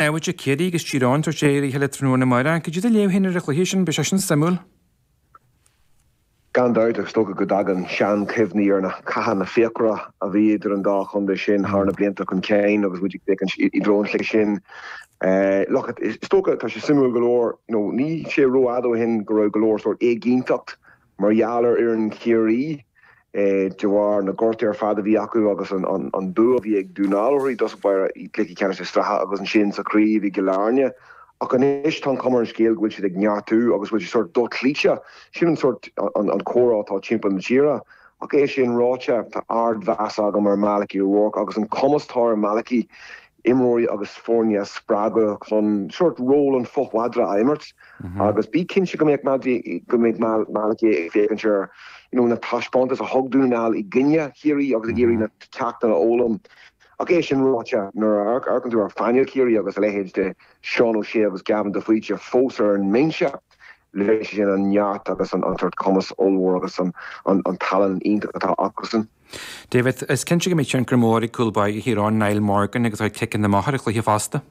David, Ciarraí agus Tír Eoghain tabhairt aghaidh ar a chéile tráthnóna amárach. Cad é do léamh féin ar an chluiche sin? Beidh sé sin suimiúil. Gan dabht, is dócha go dtagann seanchuimhní ar na cathanna fíochmhara a bhí idir an dá chontae sin thar na blianta chun cinn agus muid ag féachaint i dtreo an chluiche sin. Look it, is dócha, tá sé suimiúil go leor, níl sé ró-fhada ó shin go raibh go leor sórt éiginnteacht Mar gheall ar fhoireann Chiarraí, de bharr na gortuithe ar fad a bhí acu agus an bua a bhí ag Dún na nGall orthu i dtosach báire i gcluiche ceannais na sraithe agus ansin sa chraobh i gCill Airne, ach anois tá an chuma ar an scéal go bhfuil siad ag neartú agus go bhfuil siad sórt dochloíte. Sin an sórt an comhrá atá timpeall na tíre. Ach é sin ráite, tá ardmheas agam ar Malachy O'Rourke agus an cumas atá ar Malachy imreoirí agus foirne a spreagadh chun sórt ról an fho-mhadra a imirt agus bí cinnte go mbeidh, go mbeidh Malachy ag féachaint ar na taispeántais a thug Dún na nGall i gcoinne Chiarraí agus ag iarraidh na ceachtanna a fhoghlaim ach é sin ráite, nuair a amharcann tú ar phainéal Chiarraí agus a leithéid de Sheán Ó Sé agus Gavin de Faoite fós ar an mbinse, léiríonn sé sin an neart agus an sórt cumas ollmhór agus an tallann iontach atá acusan. David, Is cinnte go mbeidh tionchar mór ag cúl báire Thír Eoghain, Niall Morgan, agus a chuid ciceanna amach ar an chluiche fosta.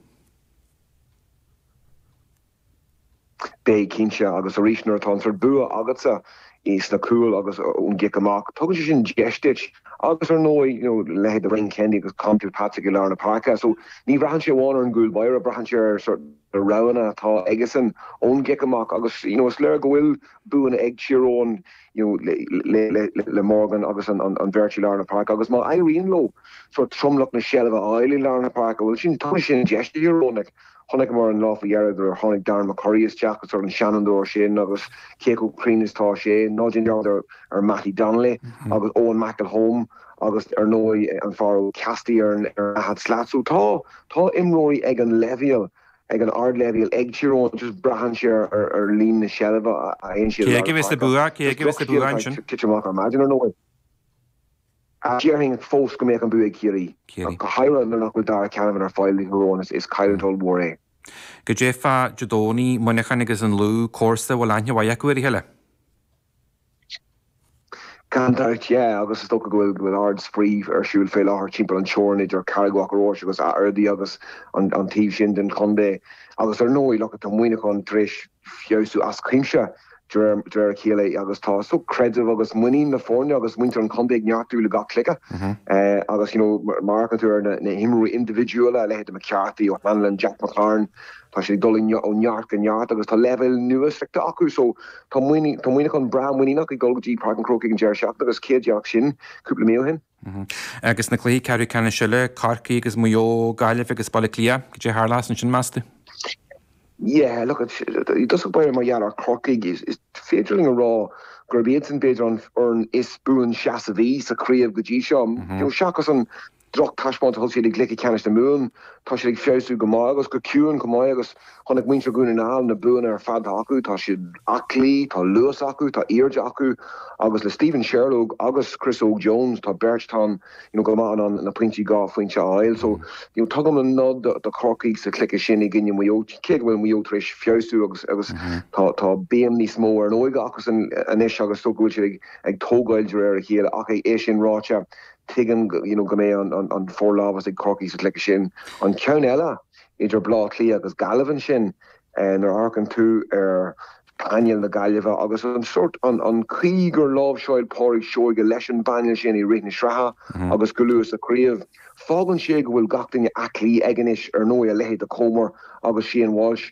Beidh, cinnte, agus arís nuair atá an sórt bua agatsa sna cúil agus ón gcic amach, tugann sé sin deis duit agus ar ndóigh, you know, leithéid de Brian Kennedy agus Conn Kilpatrick i lár na páirce so ní bhraitheann sé amháin ar an gcúl báire, braitheann sé ar sórt na roghanna atá aigesean ón gcic amach agus, you know, is léir go bhfuil buanna ag Tír Eoghain le Morgan agus an bheirt i lár na páirce agus má éiríonn leo sórt tromlach na seilbhe a fháil i lár na páirce, bhuel ansin tabharfaidh sin an deis do Thír Eoghain. Chonaiceamar an lá faoi dheireadh gur tháinig Darren McCurry isteach sórt an seanfhondúir sin agus cé chomh cruinn is atá sé, ná déan dearmad ar Mattie Donnelly agus Eoin McElholm agus ar ndóigh an fear Ó Caiside ar an daichead slat. So tá, tá imreoirí ag an leibhéal. ag an ardleibhéal ag Tír Eoghain just braitheann sé ar líon na seilbh a fhaigheann siad i lár na páirce. Cé aige a bheas an bua ansin? Just drochscéal atá ag titim amach ar maidin ar ndóigh ach déarfainn fós go mbeadh an bua ag Ciarraí, go háirithe nuair nach bhfuil Darragh Canavan ar fáil do Thír Eoghain is cailliúint ollmhór é. Cad é faoi Dé Domhnaigh, Muineachán agus an Lú, comharsa a bhfuil aithne mhaith acu ar a chéile. Gan dabht, yeah, agus is dócha go bhfuil, go bhfuil ard-spraoi ar siúl fé láthair timpeall an teorainn idir Carraig Mhachaire Rois agus Ardee agus an, an taobh sin den chontae. Agus ar ndóigh, look it, tá Muineachán tar éis feabhsú as cuimse de réir, de réir a chéile agus tá so creideamh agus muinín na foirne agus muintir an chontae ag neartú le gach cluiche. Eh, agus you know, mar, mar a fhéachann tú ar na, na himreoirí indibhidiúla, a leithéid de McCarthy, O'Hanlon, Jack McCarron, tá siad ag dul i, ó neart go neart agus tá leibhéal nua sroichte acu. So. Tá Muineachán breá muiníneach ag dul go dtí Páirc an Chrócaigh an deireadh seachtaine agus cé a déarfadh sin cúpla mí ó shin? Agus na cluichí ceathrú ceannais eile, Corcaigh agus Maigh Eo, Gaillimh agus Baile Átha Cliath, cad é a tharlós ansin, meas tú? Yeah, look, i dtosach báire mar gheall ar Chorcaigh, is féidir linn a rá gurb iadsan b'fhéidir an fhoireann is buanseasmhaí sa chraobh go dtí seo, seachas an Drochthaispeántas a thug siad i gcluiche ceannais na Mumhan. Tá siad ag feabhsú go maith agus go ciúin chomh maith agus chonaic muintir Dhún na nGall na buanna ar fad atá acu. Tá siad aclaí, tá luas acu, tá airde acu agus le Steven Sherlock agus Chris Óg Jones tá beirt atá go maith in ann na pointí dhá phointe a fháil. So tugaim an nod do Chorcaigh sa chluiche sin i gcoinne Mhaigh Eo cé go bhfuil Maigh Eo tar éis feabhsú agus agus tá béim níos mó ar an óige acusan anois agus go bhfuil siad ag tógáil de réir a chéile ach é sin ráite, Tuigim go mbeidh an forlámhas ag Corcaigh sa chluiche sin. An ceann eile idir Baile Átha Cliath agus Gaillimh ansin, nuair a amharcann tú ar phainéal na Gaillimhe agus an sórt, an chaoi gur láimhseáil Pádraig Seoige leis an bpainéal sin i rith na sraithe agus go luath sa chraobh, fágann sé go bhfuil gach duine aclaí aige anois. Ar ndóigh, a leithéid de Comer agus Shane Walsh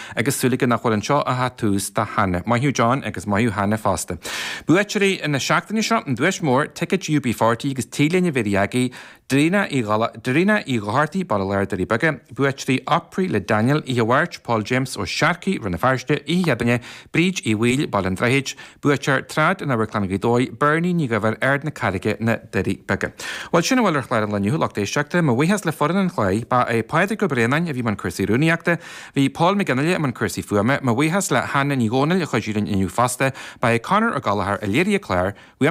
agus súil aige nach bhfuil anseo ach an tús do Hannah. Maith thú John agus maith thú Hannah fosta. Buaiteoirí na seachtaine seo, an duais mhór, ticéid UB40 agus T-léine Mhéirí Agaidh, Darina Uí Dhochartaigh, Baile Láir, Doirí Beaga, buaiteoirí Opry le Daniel, Oíche Mháirt, Paul James Ó Searcaigh, Rann na Feirste, Oíche Chéadaoine, Bríd Uí Bhaoill, Baile an Droichid, Buaiteoir, Trad, in Amharclann Ghaoth Dobhair, Bernie Ní Dhuibhir, Ard na Carraige, Na Doirí Beaga. Bhuel, sin a bhfuil ar chlár an lae inniu, lucht éisteachta. Mo bhuíochas le foireann an chláir. Ba é Pádraig Ó Braonáin a bhí i mbun cúrsaí rúnaíochta. Bhí Paul Mac Fhionnghaile i mbun cúrsaí fuaime. Mo bhuíochas le hÁine Ní Dhomhnaill a chuidigh linn inniu fosta. Ba é Conor Ó Gallchóir a léirigh an clár.